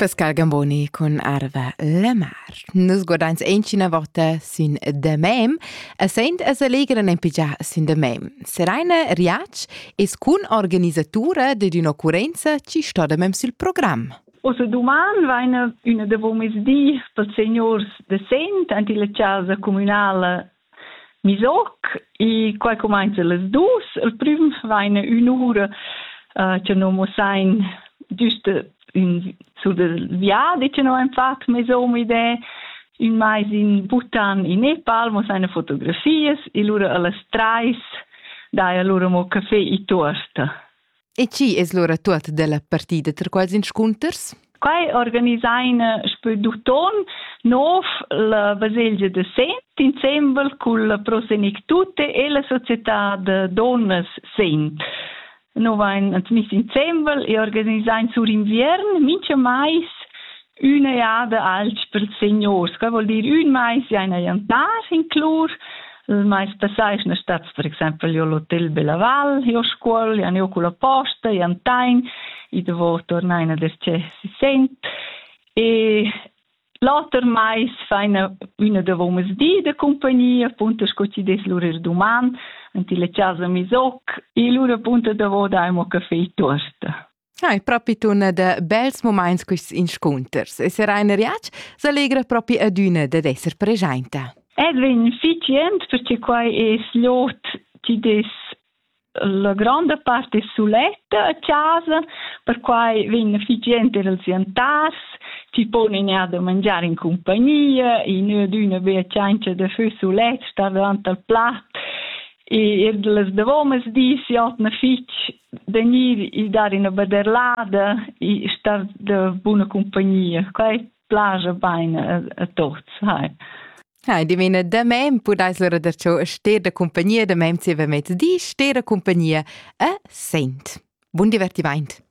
Pascal Gamboni cun Arva la mar. Nus guardains encina vota sin The Mem e saint es allegran en pigià sin The Mem. Seraina Riac es cun organisatura de d'un'occurrenza ci sto The Mem sul programm. Oso duman vaina üna devo mezdi pels seniors de Sent ant illa casa comunala Misoc, i qua cumainza las dus. Il prüm vaina ün'ura uh, cha no mussain düst ün sur dal viadi cha no han fat mesom idè. Ün mais in Bhutan in Nepal mussain fotografias e lura a las trais daja lura mo café e tuorta. E chi es lura tuot della partida ter quels inscunters? Quai organisain spe d'uton nov la baselgia de Sent insembel cul Pro Senectute e la società de donnas Sent. Nous vain admiss insembel e organisain sur inviern mincha mais Üna jada alch per seniors, que voul dir ün mais jaina jantar inclur, il mais passà eschna stats per exaimpel jo l'hotel Bella Val, jo Scuol, jan jo culla posta, jantain, i davo turnaina das-cher si Sent e l'oter mais faina üna davo mes di da cumpagnia, appunto sco chi dess lur ir duman, ant illa chasa misoc e lura appunto davo daimo caffè e tuosta. Hai propi tuna da bels moments quists inscunters e sera in riac s'allegra propi adüna dad esser preschainta. Edwin, fich jent perché quai es l'ot ti des la gronda part è suletta a casa, perquai vegn fich jent er als antars, ti pon in ja da mangiar in compagnia, in üna bea ciancia da fö sulet, star davant al plat, e er las davomas dis jotna fich vegnir il dar ina vederlada e star de buna compagnia. Quei plaja bene a, a tots. Hai. Hai, di mena da mem pudais lura da ciò ster da compagnia da mem ziva mezdi, ster da compagnia a sent. Bun divertimaint.